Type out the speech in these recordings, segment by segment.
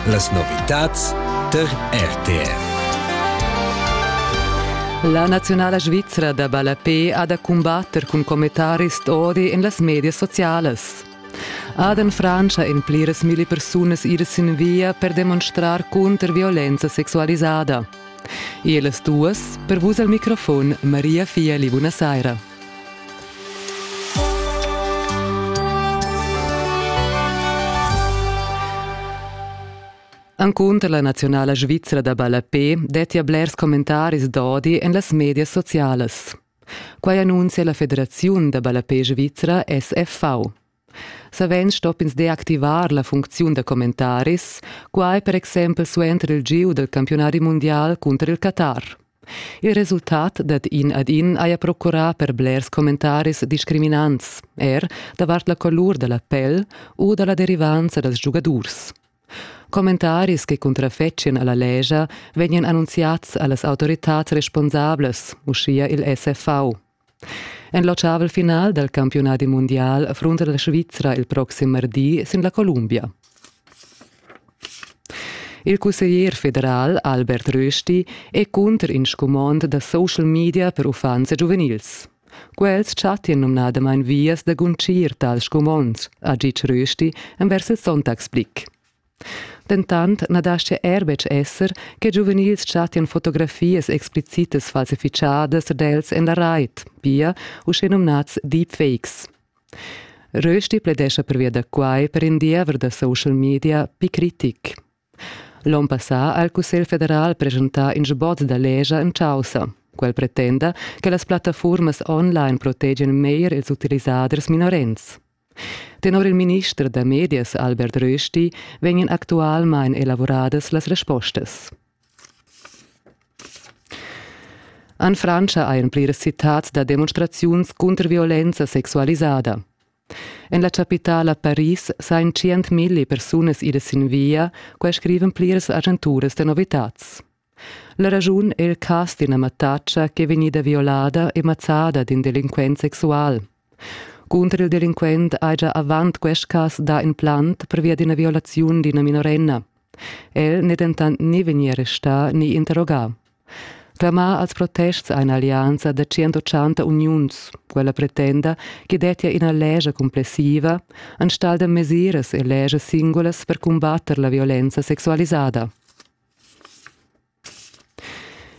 Las novitads tar RTR. La naziunala svizra da ballapé ha da cumbatter cun commentaris d'odi en las medias socialas. Ad en Frantscha en pliras milli persunas iras sin via per demonstrar cunter violenza sexualisada. E las duas, per vus al microfon, Maria Fieli, buonasera. Encunter la naziunala svizra da ballapé dettia blers commentaris d'odi en las medias socialas. Quai annunzia la federaziun da ballapé svizra SFV. Savens stopp'ins deactivar la funcziun da commentaris, quai per exempel suenter il gieu dal campiunadi mundial cunter il Qatar. Il resultat dad in ad in haja procurà per blers commentaris discriminants, er davart la colur da la pel u da la derivanza dals giugadurs. Commentaris che cuntrafetschien alla legia vegnan annunziads a las autoritads responsablas, uschia il SFV. En l'ottavel final dal campiunadi mundial affrunta la Svizra il proxim mardi sin la Columbia. Il cusseglier federal Albert Rösti è cunter in scumond da social media per uffants e giuvenils. Quels chattian numnadamain vias da guncir tals scumonds, ha ditg Rösti envers il Sonntagsblick. Dentant na dastga er betg esser che giuvenils chattian fotografias explicitas falsifichadas d'els en la rait, pia uschenumnads deepfakes. Rösti pledescha pervia da quai per in diever da social media pli critic. L'onn passà ha il Cussegl federal presentà in sbozz da legia en chaussa. Quel pretenda che las plattaformas online protegian meglier ils utilisaders minorens. Tenor il minister da medias Albert Rösti vegnan actualmain elavuradas las respostas. En Frantscha ein pliras citads da demonstraziuns cunter violenza sexualisada. En la chapitala Paris sain 100.000 persunas idas sin via, qua scriven pliras agenturas da novitads. La raschun è il cas d'ina mattatscha ch'è vegnida violada e mazzada d'in delinquent sexual. Cunter il delinquent hai gia avant quest cas dà in plant pervia d'ina violaziun d'ina minorenna. El n'è dentant ni vegnì arrestà ni interrogà. Clamà als protests eine Allianza da 180 uniuns, quella pretenda che dettia ina lescha cumplessiva enstagl da mesiras e leschas singulas per cumbatter la violenza sexualisada.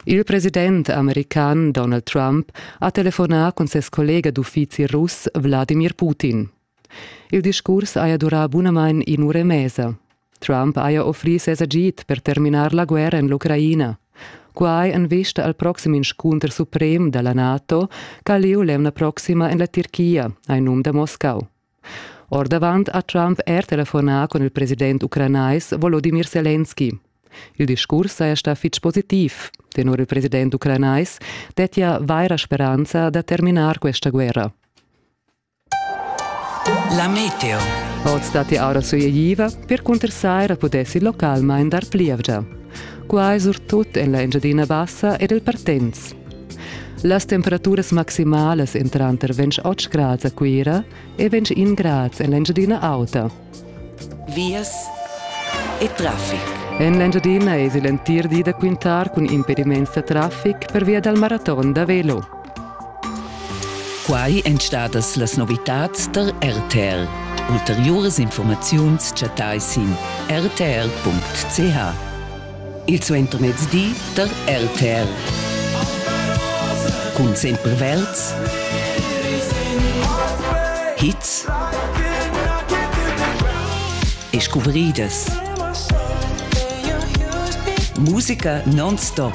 Il president american Donald Trump ha telefonà cun ses collega d'uffizi russ Wladimir Putin. Il discurs haja durà bunamain in'ura e mesa. Trump haja offrì ses agid per terminar la guerra en l'Ucraina. Quai en vista al proxim inscunter suprem da la NATO ch'ha lieu l'emna proxima en la Tirchia, hai num da Moscau. Ordavant ha Trump er telefonà cun il president ucranais Volodimir Selenski. Il discurs saja stà fitg positiv. Tenor il president ucranais dettia vaira speranza da terminar questa guerra. La meteo. Oz datti aura sulegliva, per cuntersaira pudessi localmain dar plievgia. Quai surtut en la Engiadina Bassa ed il Partenz. Las temperaturas maximalas en tranter 28 grads a Cuira e 21 grads en l'Engiadina Auta. Vias e traffic. En l'Engiadina esi l'entir di da quintar cun impediments da traffic per via dal maraton da velo. Quai èn stadas las novitads tar RTL. Ulteriuras informaziuns chattai sin rtl.ch. Il suentermezdi da RTL. Cun sempre Welz. Hits e scubridas. Musica non-stop.